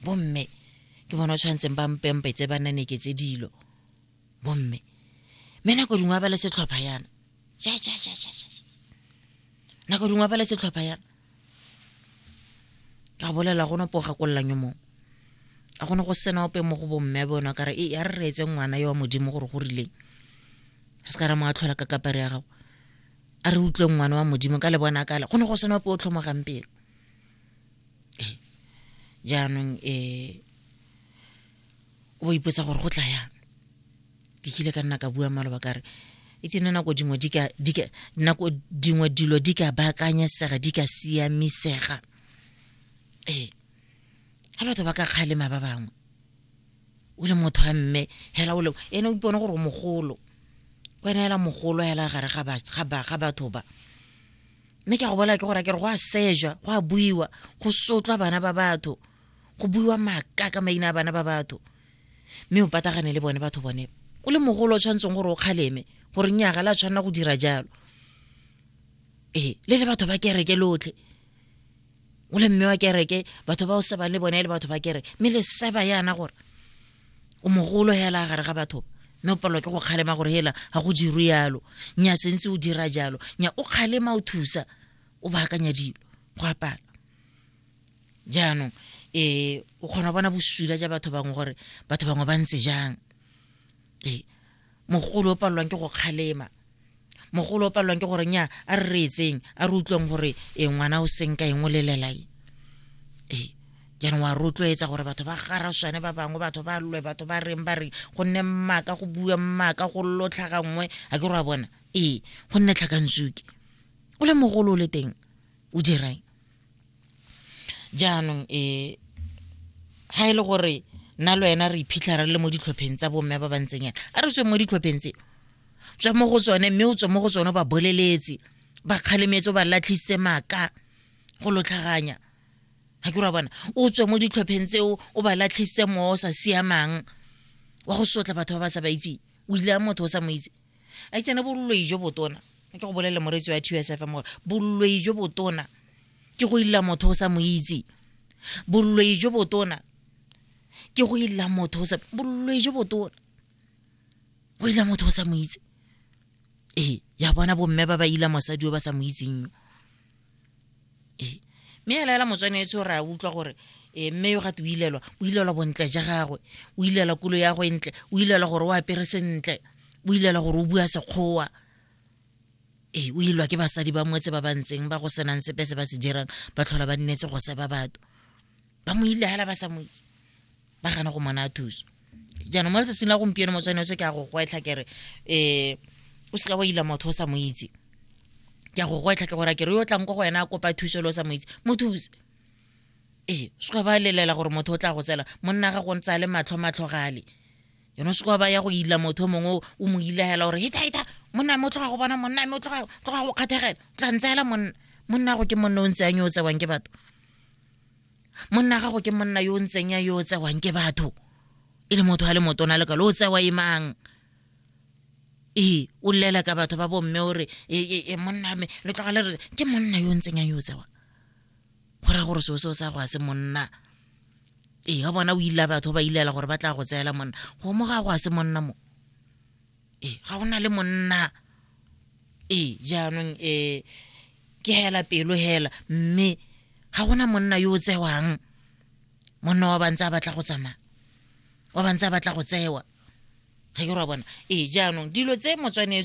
bomme ke bona o tshwanetseng ba mpempe tse ba naneke tse dilo bomme mme nako dingwe ba le setlhopha yana ja ja ja ja ja nako dingwe ba le setlhopha yana ka bolela go no po gakololang yo mongwe a gone go sena ope mo go bomme bona kare e ya re reetse ngwana yo wa modimo gore go rileng re se ka ra mo a tlhola ka kapare ya gago a re utlwe ngwana wa modimo ka le bona kale go ne go sena ope o tlhomogang pelo ee jaanong um o ba ipotsa gore go tla yang ke kile ka nna ka bua maloba ka re itse ne nako dingwe di ka di ka nako dingwe dilo di ka baakanyesega di ka siamisega ee ga batho ba ka kgalema ba bangwe o le motho wa mme hela o le ene o ipone gore o mogolo wena hela mogolo hela gare ga batho ba mme ke a go bolela ke gore ke re go a sejwa go a buiwa go sotlwa bana ba batho go buiwa maaka ka maina a bana ba batho mme o patagane le bone batho bone o le mogolo o tshwanetseng gore o kgaleme gore nyaga la tshwanela go dira jalo ee le le batho ba kereke lotlhe o le mme wa kereke batho ba o seba le bone e le batho ba kereke mme le seba yana gore o mogolo hela gare ga batho mme o palelwa ke go kgalema gore hela ga go dirwe yalo nya sentse o dira jalo nya o kgalema o thusa o baakanya dilo go apala jaanong um o kgona go bona bosula ja batho bangwe gore batho bangwe ba ntse jang ee mogolo o palelwang ke go kgalema mogolo o palelwang ke gore nya a re reetseng a re utlwang gore e ngwana o seng ka engwe lelelai ee jaanong wa rotloetsa gore batho ba garaswane ba bangwe batho ba lwe batho ba reng ba reng go nne mmaka go bua mmaka go lotlhaga nngwe a ke re wa bona ee go nne tlhakansuke o le mogolo o le teng o dirang jaanong um ga e le gore nna le wena re iphitlha re le mo ditlhopheng tsa bomme ba ba ntseng yana a re tsweng mo ditlhopheng tse tswa mo go tsone mme o tswa mo go tsone ba boleletse ba kgalemetse ba latlhise maaka go lotlhaganya ga ke ra bona o tswe mo ditlhopheng tseo o ba latlhise mo o sa siamang wa go sotla batho ba ba sa ba itseng o ile a motho o sa mo itse a itsene boloi jo botona ke go bolele moreetsi wa tsfm gore boloi jo botona ke go ila motho o sa mo itse boloi jo botona ke go ila motho o sa boloi jo botona go ila motho o sa mo itse ee ya bona bomme ba ba ila mosadi o ba sa mo itseng yo mme ela ela motswane etse gore a utlwa gore e mme yo gate o ilelwa o ilelwa bontle ja gagwe o ilelwa kulo ya go entle o ilelwa gore o apere sentle o ilelwa gore o bua sekgowa ee o ilwa ke basadi ba motse ba ba ntseng ba go senang sepe se ba se dirang ba tlhola ba nnetse go seba batho ba mo ile hala ba sa mo itse ba gana go mona thuso jaanong mo letsatsing la gompieno motswane o se ke a go gwetlha kere um o se ka wa ila motho o sa mo itse ke a go gwetlha ke gore kere yo o tlang ko go wena a kopa thuso le o sa mo itse mo thuse ee se ka ba lelela gore motho o tla go tsela monna ga go ntsa le matlho matlhogale yone se ka ba ya go ila motho mongwe o mo ila hela gore heta heta monna me o tloga go bona monna me o tloga go kgathegela o tla ntseela monna monna go ke monna o ntse a nyo o tsewang ke batho monna gago ke monna yo o ntseng ya yo o tsewang ke batho e le motho a le motona le kalo o tsewa e mang ee o llela ka batho ba bomme o re e, e, e, monna me le tlogale re ke monna yo o ntseng yang yo o tsewa go ra gore seo seo sa go a se monna ee ga bona o ila batho ba ilela gore ba tla go tseela monna go mo ga go a se monna mo ee ga o na le monna ee jaanong um ke hela pelo hela mme ga gona monna yo o tsewang monna wa bantse a batla go tsamaya wa bantse a batla go tsewa ga ke ra bona ee jaanong dilo tse motswane